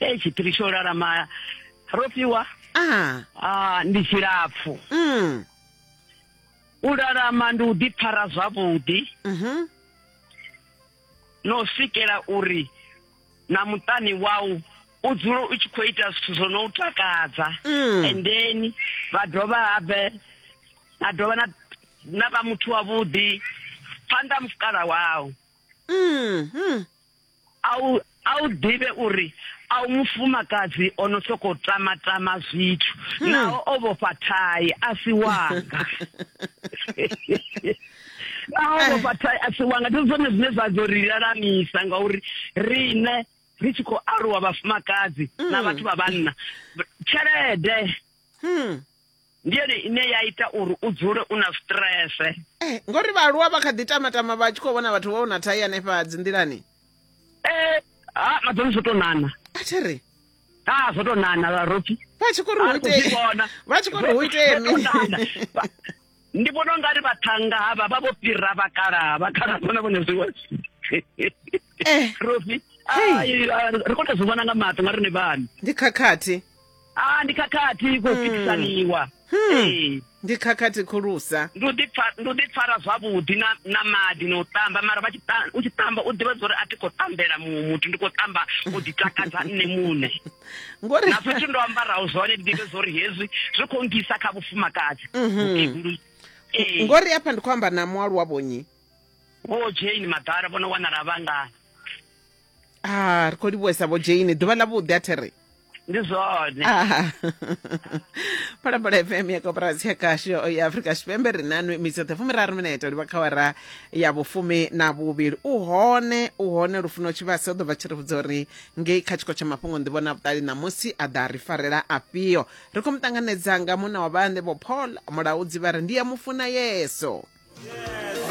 e tshiphiri tsho lalama ro fhiwa ah. ah, ndi tshilapfu mm. u lalama ndi u ḓipfara zwavhuḓi mhm. no swikela uri na muṱani wau u dzule u tshi khou ita zwithu zwo no u takadza mm. and then vha dovha habe na dovha na na vha muthu wavhuḓi phanḓa mufukala wau mm, mm. A u, a u ḓivhe uri a u mufumakadzi o no sokou tama-tama zwithu hmm. naho o vhofha thai a si wanga naho o vhofha thai a si wanga ndi zwone zwine zwa dzo ri lalamisa ngauri riṋe ri tshi khou aluwa vhafumakadzi na hmm. vhathu vha vhanna tshelede hmm. ndi yone ine ya ita uri u dzule u na strese eh, ngori vhaaluwa vha kha ḓi tamatama vha tshi khou vhona vhathu vha u na thai hanefha dzi nḓilani eh, ha madzoni zwo tou nana a thi ri ha zwo tou nana vharopi vha tshi khou ri hu itee vha tshi khou ri hu itee mi ndi vhona u nga ri vhathanga havha vha vho fhira vhakalaha vhakalaha vhona vhone zwiwe eh. rofi ri khou tou zwi vhona nga maṱo nga ri ni vhani ndi khakhathi a ndi khakhathi kho fikisaniwa Ee. ndi khakhathi khulusa ndi u ḓipfa- ndi u ḓipfara zwavhuḓi na na maḓi na u tamba mara vha tshi ta- u tshi tamba u ḓivha zwa uri a thi khou tambela muṅwe muthu ndi khou tamba u ḓitakadza nṋe muṋe ngori na zwithu ndo ambaraho zwone ndi ḓivhe zwa uri hezwi zwi khou ngisa kha vhufumakadzi Vhukegulu. Ee. ngori afha ndi khou amba na mualuwa vhonyi vho jane madala vho no wanala vhangana ah ri khou livhuwesa vho jane ḓuvha ḽa vhuḓi a there ndi zwone ah. phalaphala fm ya koporasi ya kasho ya afrika tshipembe ri na nwe mitsoṱhe fumiraru minete livha kha wara ya vhufumi na vhuvhili u hone u hone lufuno tshivhasi o ḓo vha tshi ri vhudza uri ngei kha tshiko tsha mafhungo ndi vhona vhuṱali ṋamusi a ḓa ri farela afhio ri khou mu ṱanganedza nga muna wa vhaṋe vho paul mulaudzi vha ri ndi ya mufuna yeso yeah.